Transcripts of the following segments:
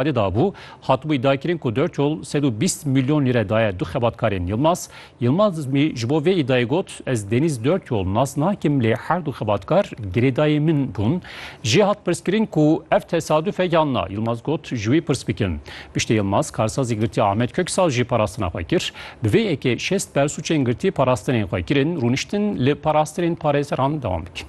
Belê dabû, hatibûyî daykirin ku Dörçol sed û bîst mîlyon lîre daye du xebatkarên Yilmaz. Yilmaz ji bo vê îdayê got, Ez Denîz Dörçol nas nakim lê her du xebatkar girêdayê min bûn. Jê hat pirskirin ku ev tesaduf e yan na. Yilmaz got, Ji wî pirs bikin. Piştî Yilmaz karsazî girtiya Ahmet Köksal jî parastina xwe kir. Bi vê yekê şêst bersûçên girtî parastinên xwe kirin, rûniştin li parastinên parêzeran dewam dikin.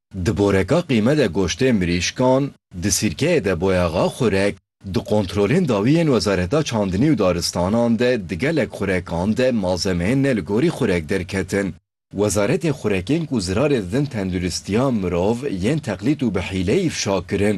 Di boreka qîme de goştê mirîşkan, di sîrkeyê de boyaxa xurek, di kontrolên dawî yên Wezareta Çandinî û Daristanan de di gelek xurekan de malzemeyên ne li gorî xurek derketin. Wezaretê Xurekên ku zirarê didin tenduristiya mirov yên teqlîd û bi hîleyî fişa kirin.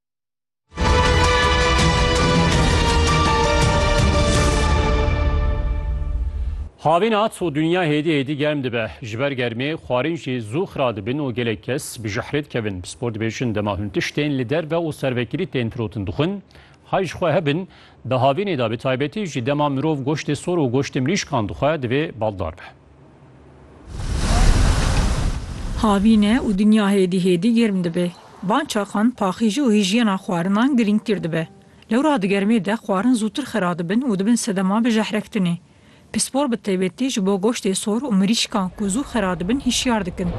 Havîn hat û dinya hêdî hêdî germ dibe. Ji ber germê xwarîn jî zû xira dibin û gelek kes bi jihrê dikevin. Bi spor dibêjin dema hûn tiştên li derve û servekirî tên firotin dixwin. Hay ji xwe hebin, di havînê de bi taybetî jî dema mirov goştê sor û goştê mirîşkan dixwe divê baldar be. Havîn e û dinya hêdî hêdî germ dibe. Van çaxan paxîjî û hîjyena xwarinan girîngtir dibe. Lewra di germê de xwarin zûtir xira dibin û dibin sedema bijehrektinê. Pispor bi taybetî ji bo goştê sor û mirîşkan ku zû xira dibin hişyar dikin.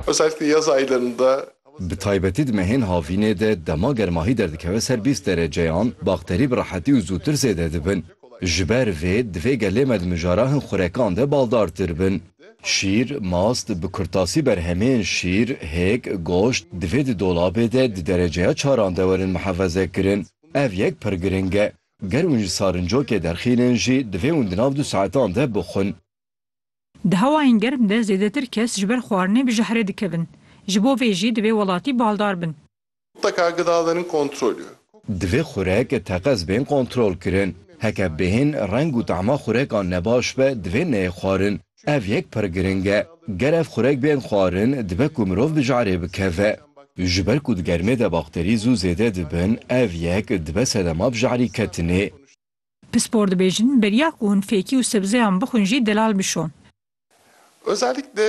Wezareta Yezayîlan de Bi taybetî di mehên havînê de dema germahî derdikeve ser bîst dereceyan, bakterî bi rehetî û zûtir zêde dibin. Ji ber vê divê gelê me di mijara hin xurekan de baldartir bin. Şîr, mast, bi kurtasî berhemên şîr, hêk, goşt, divê di dolabê de di dereceya çaran de werin mihefezekirin. Ev yek pir giring e. Ger hûn ji sarincokê derxînin jî divê hûn di nav du saetan de bixwin. Di hewayên germ de zêdetir kes ji ber xwarinê bi jehrê dikevin. Ji bo vê jî divê welatî baldar bin. Teka ke da derin kontrolê. Divê xurek teqez bên kontrolkirin. Heke bêhên reng û tama xurekan nebaş be divê neyê xwarin. Ev yek pir giring e. Ger ev xurek bên xwarin dibe ku mirov bi jehrê bikeve. Ji ber ku di germê de bakterî zû zêde dibin ev yek dibe sedema bi jehrî ketinê. Pispor dibêjin, beriya ku hûn fêkî û sebzeyan bixwin jî delal bişon. Özellikle.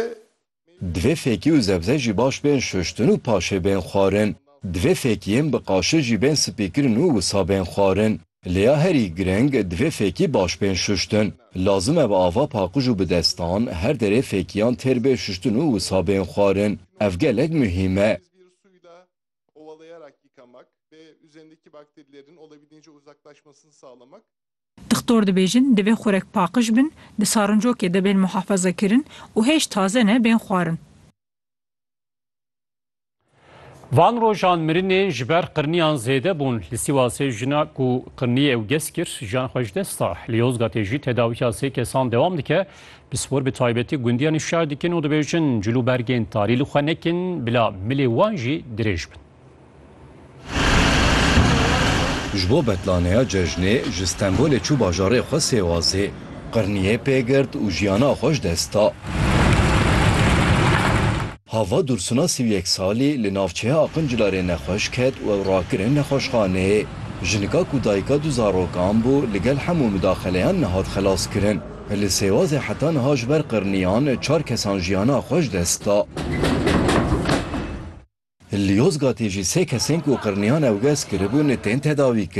Divê fêkî û zebze jî baş bên şuştin û paşê bên xwarin. Divê fêkiyên bi qaşê jî bên spîkirin û wisa bên xwarin. Lê ya herî gireng, divê fêkî baş bên şuştin. Lazim e bi ava paqij û bi destan, her derê fêkiyan têr bê şuştin û wisa bên xwarin. Ev gelek muhîm e. ovalayarak yıkamak ve üzerindeki bakterilerin olabildiğince uzaklaşmasını sağlamak. Dixtor dibêjin divê xurek paqij bin, di sarincokê de bên muhafazekirin û hêj taze ne bên xwarin. Van rojan mirinê ji ber qirniyan zêde bûn. Li Sîwasê jina ku qirniyê ew gez kir jiyan xwe ji dest da. Li Yozgatê jî tedawiya sê kesan dewam dike. Pispor bi taybetî gundiyan îfşa dikin û dibêjin cil û bergên tarî li xwe nekin bila milê wan jî dirêj bin. Ji bo betlaneya cejnê ji Stenbolê çû bajarê xwe Sêwazê. Qirniyê pê girt û jiyana xwe ji dest da. Hava Dursuna sî û yek salî li navçeya Aqincilarê nexweş ket û ew rakirin nexweşxaneyê. Jinika ku dayika du zarokan bû li gel hemû midaxeleyan nehat xelaskirin. Li Sêwazê heta niha ji ber qirniyan çar kesan jiyana xwe ji dest da. Li Yozgatê jî sê kesên ku qirniyan ewgez kiribûn tên tedawîkirin.